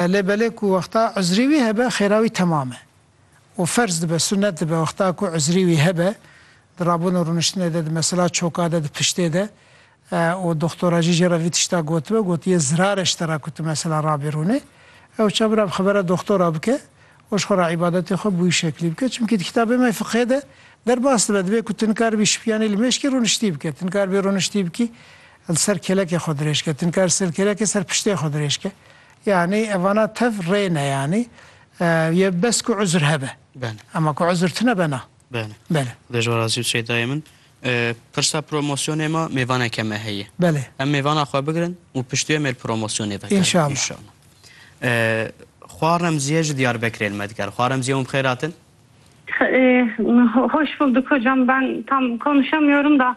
Belê belê ku wexta uzrî wî hebe xêra wî temam e û ferz dibe, sunet dibe wexta ku uzrî wî hebe di rabûn û rûniştinê de, di mesela çoka de, di piştê de û doxtora jî jê re vî tişta gotibe, gotiye zirare ji te re ku tu mesela rabî rûnê. Ew ça bira bi xebera doxtora bike û ji xwe re îbadetê xwe bi wî şeklî bike. Çimkî di kitabê me fiqhê de derbas dibe dibe ku tu nikaribî şipiyanî li mêşkî rûniştî bike, tu nikaribî rûniştî bikî li ser kêlekê xwe dirêj ke, tu nikaribî ser kêlekê ser piştê xwe dirêj ke. Yanî evana tev rê ne yanî yê bes ku uzr hebe. Bele. Ema ku uzr tune be na. Bele. Bele. Xwedê ji we razî bi Şeydayê min. Pirsa promosyonê me mêvaneke me heye. Belê. Em mêvana xwe bigirin û piştî wê mêr promosyonê vekirin. Înşallah. Înşallah. Xwa Remzîye ji Diyarbekirê li me dikare. Xwa Remzîye hûn bi xêr hatin. Hoş bulduk hocam ben tam konuşamıyorum da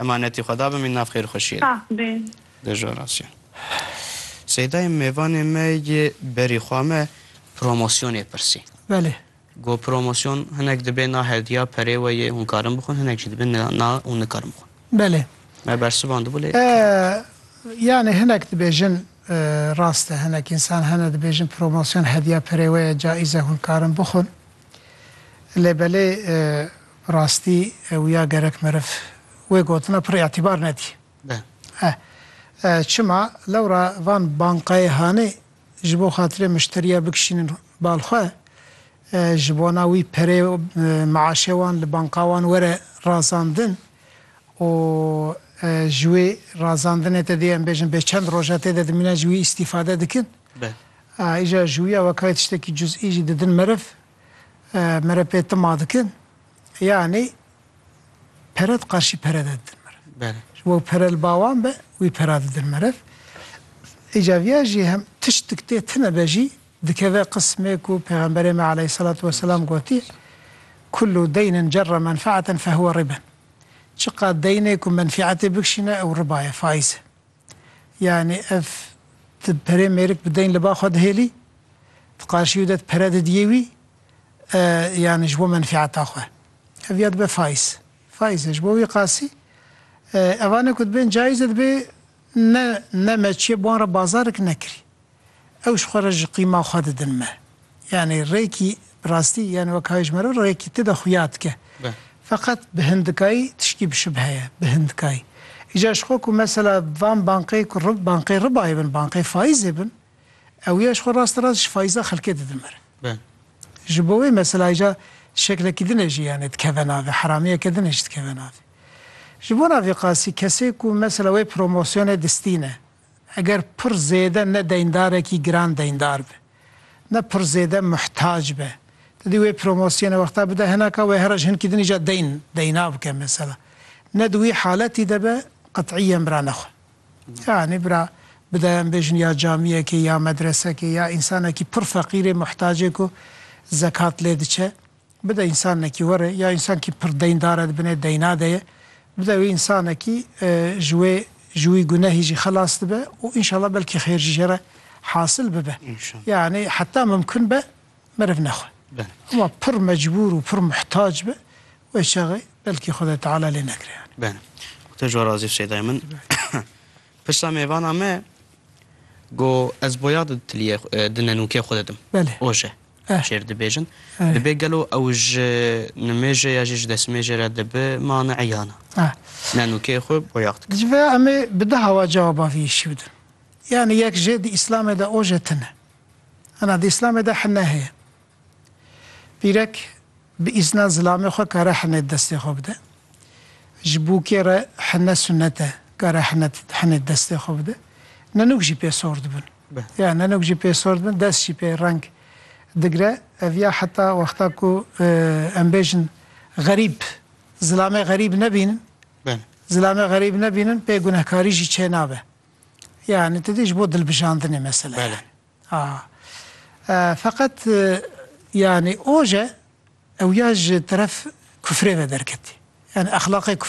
Emanetî Xweda bimîn nav xêrxweşiyê de. Sax bê. De ji orasyon. Seydayê mêvanê me yê berî xwe me promosyonê pirsî. Belê. Got promosyon hinek dibê na hediya perê we yê hûn karin bixwin hinek jî dibê na hûn nikarin bixwin. Belê. Me bersivandibû lê. Yanî hinek dibêjin rast e hinek însan hene dibêjin promosyon hediya perê we ye caîz e hûn karin bixwin. Lê belê. Rastî ew ya gerek meriv wê gotina pir îtîbar nedî. Eh. Çima lewra van bankayê hanê ji bo xatirê mişteriya bikişînin bal xwe, ji bona wî perê miaşê wan li banka wan were razandin û ji wê razandinê te dê em bêjin bê çend roja tê de dimîne ji wî îstîfade dikin. Îja ji wî ya wekayê tiştekî cuzî jî didin meriv. Mere pê tima dikin, yanî pere di qarşî pere de didin meriv. Belê. Ji bo pere li ba wan be, wî pera didin meriv. Îca viya jî hem tiştik tê tine be jî dikeve qismê ku Pêxemberê me aleyhîsselatu weselam gotiye Kullu deynin cerra menfeaten fehuwe riben. Çiqad deynê ku menfîetê bikişîne ew riba ye, faiz e. Yanî ev ti perê mêrik bi deyn li ba xwe dihêlî, di qarşî wî de ti pere didiyê wî yanî ji bo menfîeta xwe. Ev ya dibe faiz. Faiz e ji bo wî qasî evanê ku dibên caiz e dibê ne ne me çiye bi wan re bazarik nekirî. Ew ji xwe re ji qîma xwe didin me. Yanî rêkî bi rastî yanî weka wê ji me re rêkî ti de xuya dike. Feqet bi hindikayî tiştî bişibhe ye. Bi hindikayî. Îcar ji xwe ku mesela van bankê ku rib bankê ribayê bin, bankê faîzê bin, ew ya ji xwe rast rast ji faîza xelkê didin me re. Ji bo wê mesela îcar şeklekî din e jî yanî dikeve navê, heramiyeke din e jî dikeve navê. Ji bo na vê qasî kesê ku mesela wê promosyonê distîne, Eger pir zêde ne deyndarekî giran deyndar be, ne pir zêde muhtac be, tu dê wê promosyonê wexta bide hinaka wê heroj hinkî din îcar deyn deyna bike mesela. Ne di wî haletî de be qet'îyen bira nexwe. Yanî bira bide em bêjin ya camiyekê ya medresekê ya însanekî pir feqîrê muhtacê ku zekat lê diçe. Bide însanekî were ya însankî pir deyndar e di binê deyna de ye. Bide wê însanekî ji wê ji wî gunehî jî xelas dibe û înşallah belkî xêr jî jê re hasil bibe. Yanî heta mimkun be meriv nexwe. Hema pir mecbûr û pir muhtac be wê çaxê belkî Xwedayê Teala lê nekire yanî. Benê. Tu ji wan razî Sêdayê min. Pirsa mêvana me got ez boyax di tiliyê di nenûkê xwe de dim. Belê. Oje. şêr dibêjin. Dibê gelo ew ji nimêjê ya jî ji destmêjê re dibi mane eyana. Ne nûkê xwe boyax dikin. Ji vê em ê bi du hawa cewaba vî îşî bidin. Yanî yek jê di Îslamê de o jê tune. Hena di Îslamê de hine heye. Pîrek bi îzna zilamê xwe kare hinê di destê xwe bide. Ji bûkê re hine sunet e, kare hine di hinê di destê xwe bide. Ne nûk jî pê sor dibin. be. Ya nenok jî pê sor dibin, dest jî pê reng digre. Ev ya heta wexta ku em bêjin xerîb, zilamê xerîb nebînin, zilamê xerîb nebînin pê gunehkarî jî çê nabe. Yanî tu dî ji bo dilbijandinê mesele ye. A Feqet yanî oje ew ya ji teref kufrê ve derketî. Yanî exlaqê kufrî.